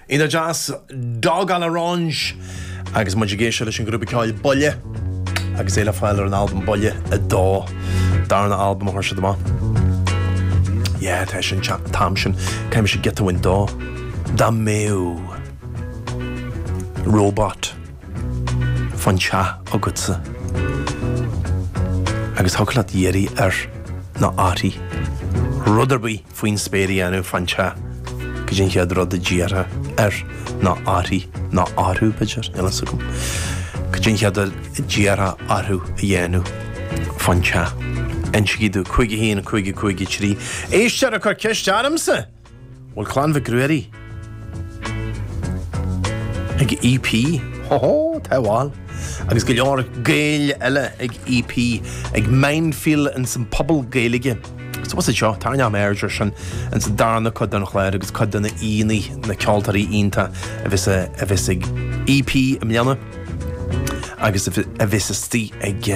Iontach deas, Dog à l'orange! Agus muid ag éisteacht leis an ghrúpa ceoil Buille, agus é le fáil ar an albam Buille 2, darna albam a chuir siad amach. Yeah, tá sé an t-am sin, caithfidh mise giota uainn dó. Dá mbeadh robot fán teach agatsa agus thiocfadh leat iarraidh air nó uirthi rud ar bith, faoin spéir a dhéanamh fán teach, caidé an chéad rud a d'iarrfá air nó uirthi, nó orthu, b'fhéidir, níl a fhios agam, caidé an chéad rud a d'iarrfá orthu a dhéanamh fán teach. Insígí domh, 51553. Éisteoir ag cur ceiste ormsa! Bhfuil Clann Mhic Ruairí. Ag EP, hó hó, tá, bhail. Agus go leor Gaeil eile ag EP, ag Mindfield ins an Puball Gaeilge. So bhfuil a fhios agat seo, tarraingeoidh mé aird ar sin ins an darna cuid den chlár agus cuid de na aíonnaí, na ceoltóirí iontach a bheas ag EP i mbliana. Agus a bheas istigh ag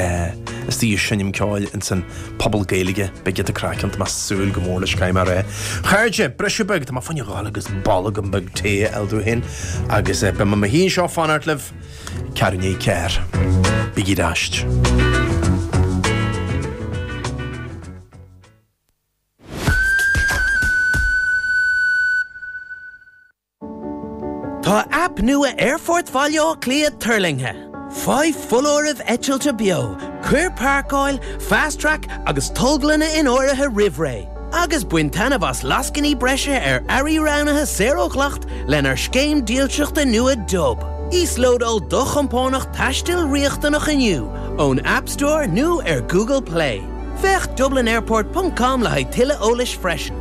seinm ceoil ins an Puball Gaeilge, beidh craic ann. Tá mé súil go mór leis. OK mar é, a chairde, briseadh beag, tá mé fá choinne dhul agus bolgam beag tae a fháil domh féin, agus beidh mé i mo shuí anseo ag fanacht libh ceathrar naoi ceathair. Bígí ar ais. Tá aip nua Aerfort Bhaile Átha Cliath tuirlingthe! Faigh foláirimh eitilte beo, cuir Páirceáil, Fast Track agus Tolglanna in áirithe roimh ré, agus bain taitneamh as lascainí breise ar earraí roghnaithe saor ó dhleacht lenár scéim dílseachta nua Dub. Íoslódáil do chompánach taistil riachtanach inniu ón App Store nó ar Google Play. Féach dublinairport.com le haghaidh tuilleadh eolais freisin.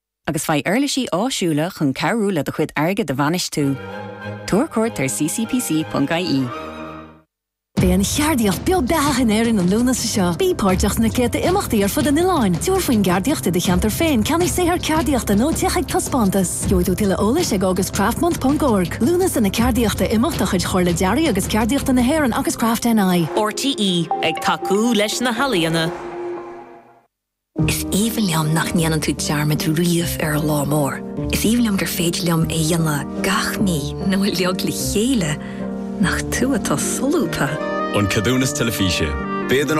agus faigh uirlisí áisiúla chun cabhrú le do chuid airgid a bhainistiú. Tabhair cuairt ar ccpc.ie. Beidh an cheardaíocht beo beathach in Éirinn an Lúnasa seo. Bí páirteach sna céadta imeachtaí ar fud an oileáin, tabhair faoin gceardaíocht i do cheantar féin, ceannaigh saothar ceardaíochta nó téigh chuig taispeántas. Gheobhaidh tú tuilleadh eolais ag augustcraftmonth.org. Lúnasa na Ceardaíochta Imeacht de chuid Chomhairle Dearaidh agus Ceardaíochta na hÉireann agus CRAFTNI. RTÉ ag tacú leis na healaíona. Is aoibhinn liom nach ndéanann tú dearmad riamh ar an lá mór. Is aoibhinn liom gur féidir liom é a dhéanamh gach mí nó uilig le chéile, nach tú atá solúbtha! An Ceadúnas Teilifíse. B'éigean